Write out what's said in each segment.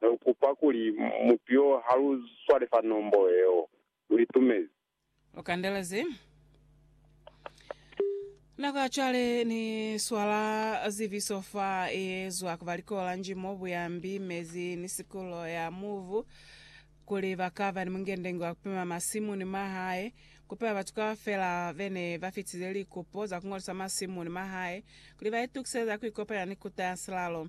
Ne lu kupa kuli mutu yo ha lu swale fa nombo yeo. Lu itumezi. Lu kandelezi. Nako ya cwale ni swala ziviso fa ye zwa ku ba likola njimo, buyambi, mezi, ni sikulo ya mubu, kuli ba ka ba ni mungendengi wa ku pima masimu ni mahae, ku pima batu kaufela be ne ba fitize likupo za ku ngolisa masimu ni mahae, kuli ba itukisele za ku ikopanya ni Kuta ya Silalo.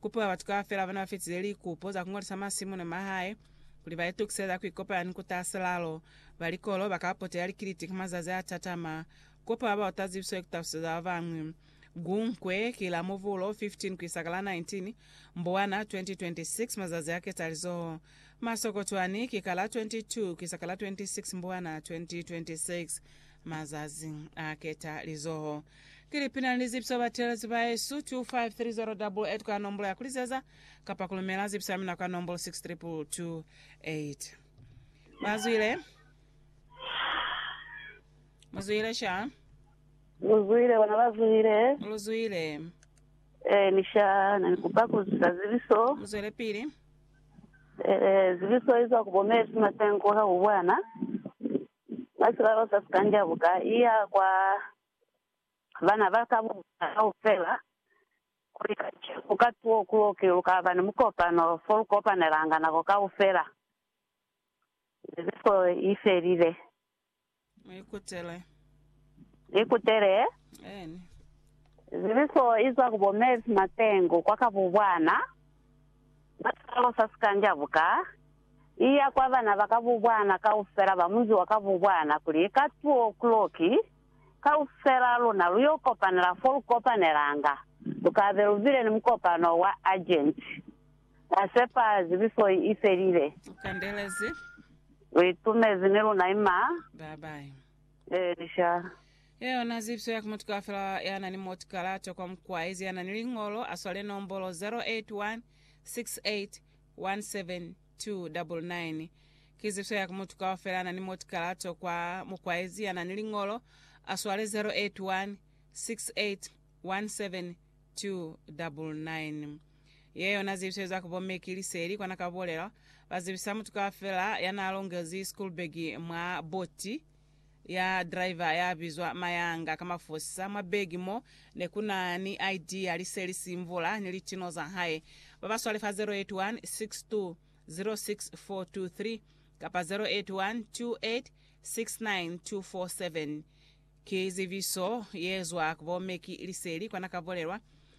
Kupiwa batu kaufela bana bafitize likupo za kungolisa masimu ni mahae kuli ba itukise za kuikopanya ni kuta silalo. Ba likolo ba ka potela likiliti ka mazazi a tatama. Kupiwa baota zibiso ni kutalusiso za babañwi. Gunkwe ki la Mubulu 15 kuisa ka la 19 Mbuwana 2026, mazazi a ketalizoho. Masokotwani ki ka la 22 kuisa ka la 26 Mbuwana 2026, mazazi a ketalizoho. Ki lipi na li zibiso batelezi baesu? 253088 kwa nombolo ya kulizeza kapa kulumela zibiso ya mina kwa nombolo 63228. Bazwile. Muzwile sha. Luzwile, bona bazwile. Muluzwile. Eh, ni sha, na ni kupa kuzisa zibiso. Muzwele pili. Eh, zibiso izwa ku bomesu matengo ka ku bwana. Ka sibaka sa sikanja buka iya kwa bana ba ka buka kaufela, kuli kacenu ku ka tuo kulo ki lu ka ba ni mukopano fo lu kopanelanga nako kaufela ze zifo i felile. Mu ikutele. Ikutele. Eeni. Zibiso i zwa ku bo Mavis Matengu kwa Kabubwana, ka sibaka sa sikanja buka. iya kwa bana ba kabubwana kaufela ba munzi wa kabubwana kuli, Ka two o'clock, kaufel'a luna lu yo kopanela fo lu kopanelanga, lu ka be lu bile ni mukopano wa urgent. Ra sepa zibiso i felile. U kandelezi. U itumezi ni luna ima. Bye bye. Ee, sha. Ye yona zibiso ya ku mutu kaufela ya na ni moti kalato kwa mukwaezi ya na ni liñolo, a swale nombolo 081 68 17299 Ki ziso ya ku mutu kaufela na ni motikalato kwa mukwaezi ya na ni liñolo, a swale 081 68 17 299 Ye yona zibiso za ku bo Meki Liseli kwa na ka bulela, ba zibisa mutu kaufela ya na longezi school bag mwa boti. ya driver ya bizwa Mayanga ka mafosisa mwa begi mo ne ku na ni ID ya liseli Simvula ni litino za hae. Ba ba swale fa 0816206423 kapa 0812869247. Ki zibiso ye zwa ku bo Meki Liseli kwa na ka bolelwa.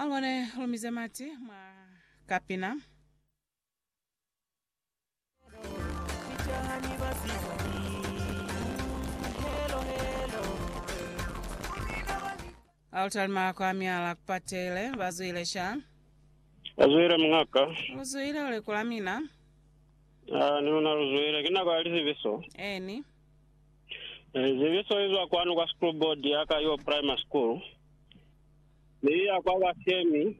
Angone lumize mati mwa kapina. Altari mako amyala kupatele bazwile sha Bazwile mngaka. luzwile ulekula mina Ah, ni una luzwile. Kina kwa lizibiso. eni Eh, Zebeso izwa kwanu kwa school board ya ka yo primary school, mi iya kwa bashemi,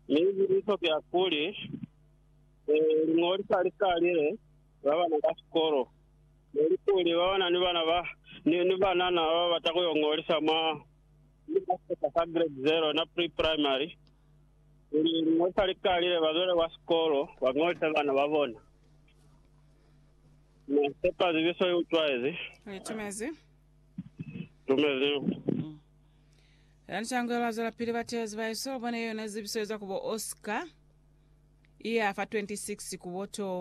mi ibuliso ki ya kuli, eh, lingolisa likalile ba bana ba sikolo, nelikuli ba bana ni bana ba ni, ni banana ba bata kuyo ngolisa mwa seta sa grade zero na pre primary, kuli lingolisa likalile bazwele kwa sikolo bangolise bana ba bona. Na sepa zibiso i utwaezi. Ni tumezi. Tumezi. Lani Changwelo a zwelapili ba teezi ba yesu, bona yona zibiso eza kubo Oscar, iya fa 26 kubo 2.